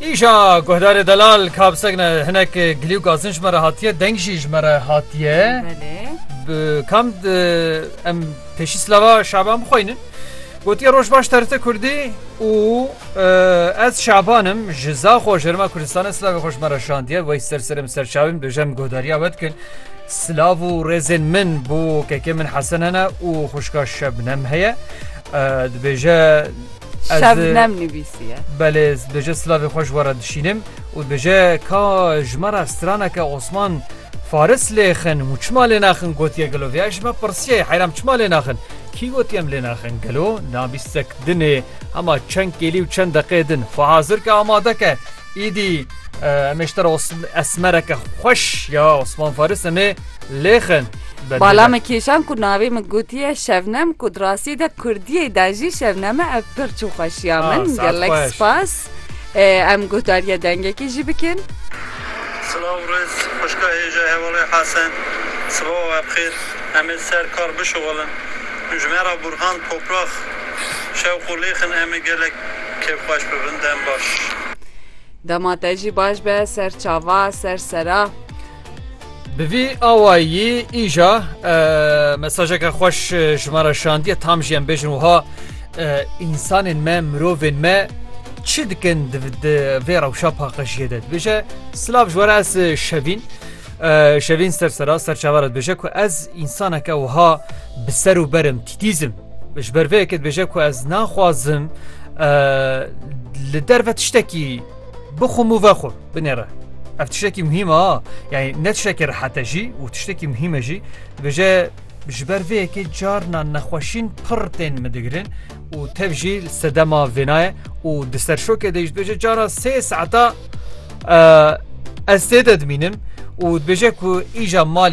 Îşa guhdarê delal ka bi seg ne hinek gilî û gazin ji me re hatiye deng jî ji me re hatiye kam em pêşî silava şaban bixweynin gotiye roj baş terite kurdî û ez şabanim ji zaxo ji rima Kurdistanê silavê xweş me re şandiye wey ser serim serçavim döjem guhdariya we dikin silav û rêzên min bû kekê min hesen hene û xuşka şebnem heye dibêje Şebnem nivîsiye. Belê dibêje silavê xwe ji we re dişînim û dibêje ka ji me re straneke Osman Faris lêxin û çima lênaxin gotiye gelo vê ya ji me pirsiye heyram çima lênaxin kî gotiye em lênaxin gelo na bîstek dinê hema çend kêlî û çend deqê din xwe hazir ke amade ke Îdî em ê ji te re esmereke xweş ya Osman Faris em ê lêxin. Bala min kêşan ku navê min gotiye şevnem ku di rastî de kurdiyê de jî şevneme ev pir çû xweşiya min gelek spas em gotariye dengekê jî bikin. Silav rêz xwişka hêja hevalê Hesen sibawa we bi xêr em ê ser kar bişuxulin ji me re Burhan Toprax şewq û lêxin em ê gelek Kêf xweş bi bin dem baş. Dema te jî baş be ser çava ser sera. Bi vî awayî îja mesajeke xweş ji me re şandiye tam jî em bêjin wiha însanên me mirovên me çi dikin vê rewşa paqijiyê de dibêje silav ji were ez şevîn şevîn ser sera serçavara dibêje ku ez însaneke wiha bi ser û berim tîtîzim Ji ber vê yekê dibêje ku ez naxwazim li derve tiştekî bixwim û vexwim binêre. Ev tiştekî muhîm e yani ne tiştekî rehete jî û tiştekî muhîm e jî dibêje ji ber vê yekê carna nexweşîn pir tên min digirin û tev jî sedema vênaye û di ser şokê de jî dibêje carna sê saeta ez tê de dimînim û dibêje ku îja malî